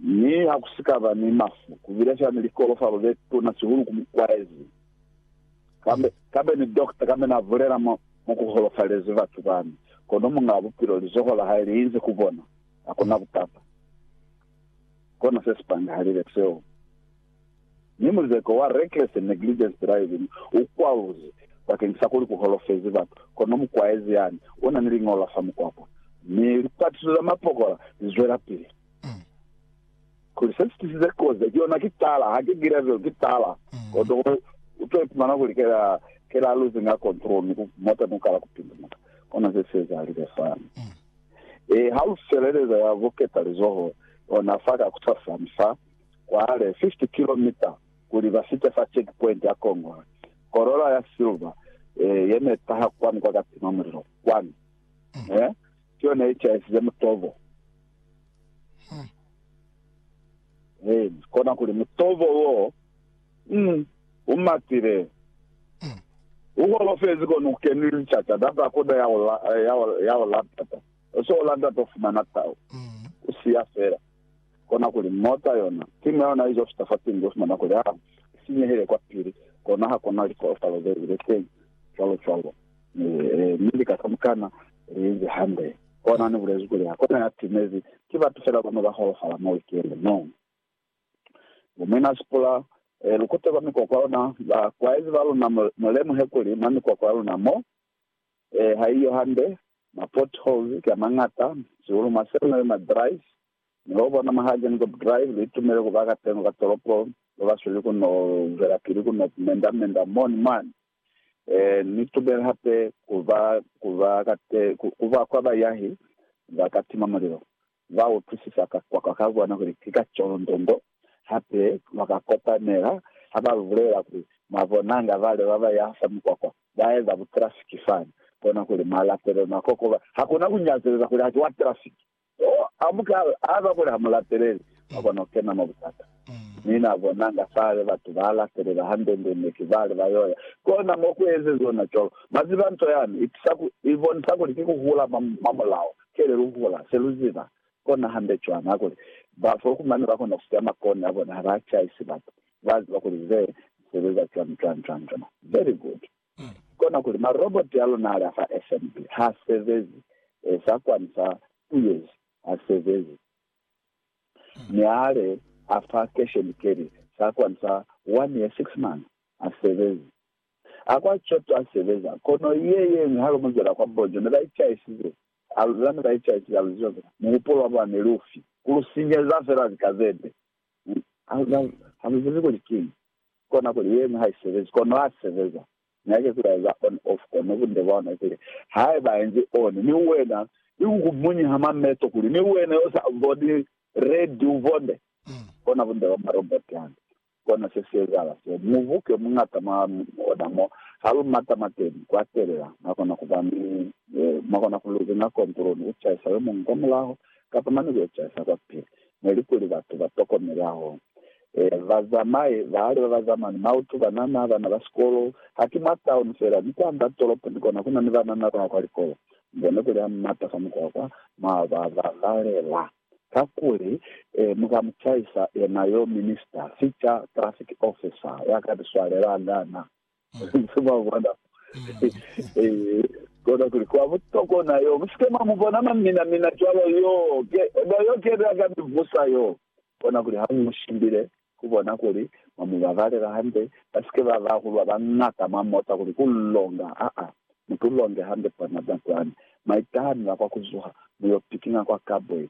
Mi ha ku si ka ba ni mafu, ku bile fela ni likolofalo ze tuna sihulu ku mukwaezi. Kambe, kambe ni dokta kambe na bulela mo, mo ku holofalezi batu bani, kono Muñaa Bupilo, lizoho la Hae li inzi ku bona. Hakuna butata. Kona se si pangahalile seo. Mi muzeko wa reckless and negligence driving u kwaluzi bakeng sa kuli ku holofezi batu, kono mukwaezi yani u na ni liñolo la fa mukwako. Mi lipatiso za mapokola li zwelapili. Kuli se si tisize kozi ki yona ki tala, haki gravel, ki tala. Koto u to ipumana kuli ke la, ke la losing a control, mi mota ni kala ku pindumuka. Kona ze si ezahalize fani. E, ha lu feleleza ya buketa lizoho, ona fa ka kusasani fa, kwale 50 kilomita kuli ba fite fa check point ya Congo, Corolla ya silver eh, ye ne taha kwani kwa ka tima mulilo kwani mm. eh, ki yona ye chaisize mutobo mm. eh, kona kuli mutobo wo mm, umatile mm. ukolofezi kona ukeni lichata daba koda ya ola eh, ya ola ya ola tata oso ola ndata ufumana tao mm. usiya fela Kona kuli mota yona, simu yayona izo fita fa pingo, ufumana kuli ha i sinyehile kwa pili, kona ha kuna likoofalo ze zili teñi, cwalo cwalo. Mi, mi lika ka mukana li inzi hande. Kona ni bulezi kuli ha kuna ya timezi, ki batu fela bano ba holofala mwa wikende. No. Bo Mwina Sipula, e, lu kute kwa mikwakwa yona, ba kwaezi ba luna, mu, mu lemuhe kuli mwa mikwakwa ya luna mo, e, ha iyo hande, ma potholes ki a mañata, sihulu mwa Seminary, ma drives, Mi lwa bona mwa ha Gengop Drive, lu itumele ku ba ka teño ka tolopo. Lu ba sweli ku n'o zwelapili ku n'o menda-menda mo ni mwani. Ee, ni tubela hape ku ba, ku ba ka te, ku, ku ba kwa bayahi ba ka tima mulilo. Ba utwisisa ka kwakwa ka bona kuli ki ka colondongo. Hape ba ka kopanela ha ba lu bulela kuli, Mwa bonanga, bale ba ba yaha fa mikwakwa, ba eza butrafiki fani. Kona kuli mwa latelela, mwa kokoba. Hakuna ku nyazeleza kuli ha ki wa trafiki. Mo a mu ka a ba bule ha mu lateleli, mwa kona ku kena mwa butata. Mi na bonanga fale batu ba latelela hande-nde ne ki bali ba yo ya kona mo ku ezeziwe na cwalo. Mwa ziba, nto yani i tusa ku i bonisa kuli ki ku hula mwa, mwa mulao. Kele lu hula se lu ziba kona hande cwana kuli ba fo ku mane ba kona ku siya makoni a bona ha ba caisi batu. Ba ziba kuli ze sebeza cwani, cwani, cwani, cwani. Very good. Kona kuli, Maroboti a luna al'a fa FNB h'a sebezi, sa kwani sa Tuyeji ha sebezi, mi ale a fa Cash and Carry sa kwani sa One Year Six Months ha sebezi. A kwa Choto ha sebeza, kono ye yeñwi ha lu mu zwela kwa Bonjo ne ba icaisize, a lu zwa ne ba icaisize, a lu ziba fela, muhupulo wa bona ne li ufi, ku lu sinyeza fela lika ze nde. Ha lu zibi kuli kiñi. Ko nako yeñwi ha i sebezi, kono ha sebeza. Mi hake kuli a eza on off, kono bunde bwa ona kuli, haiba a enzi on, mi wena i ku kumunyiha mameto kuli ni wena yo sa boni red u bonde, kona bunde bwa marobot hande. Kona se si ezahala seo. Mubuke muñata mwa ona mo ha lu mata mateni ku atelela, mwa kona ku ba ni, mwa kona ku luzinga control ni ku caisa yomuñwi kwamulaho kapa mane ku yo caisa kwapili. Nelikuli batu ba tokomele hahulu. Bazamai bahali ba bazama ni mautu, banana, bana ba sikolo. Haki mwa tauni fela, ni kwa nda tolopo ni kona kuna ni banana bao kwa likolo. Ni bone kuli ha mu mata fa mukwakwa, mwa ba babalela. Kakuli, mu ka mu chaisa yena yo minista, fica, traffic officer, ya ka ni swalelanga na. Nze mwa bona mo. Ee, kona kuli kwa butokwa na yo. Musike mwa mu bona mwa mina mina cwalo yo. Ke, eba yo kebe a ka mi vusa yo. Kona kuli ha mu shimbile, ku bona kuli mwa mu babalela hande, ba sike ba ba hulwa ba ngata mwa mota kuli ku longa. Aa, mu tu longe hande kwa naba kwani. Mwa itaha ni la kwa ku zuha, mu yo pikinga kwa carbide.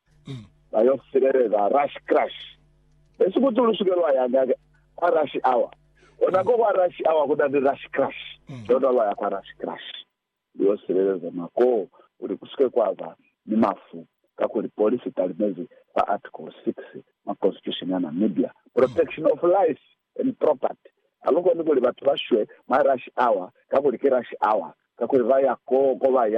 ba yo sileleza rush crash. Besi kuti lu suke lwa ya ka, kwa rush hour. Kona ko kwa rush hour ku na ni rush crash, lona lwa ya kwa rush crash. Lu yo sileleza mwa koo kuli ku suke kwa ba ni mafu, kakuli polisi i talimezi kwa Article 6 mwa Constitution ya Namibia, Protection of Life and Property. Ha lu koni kuli batu ba shwe mwa rush hour, kakuli ki rush hour, kakuli ba ya koo ko ba ya.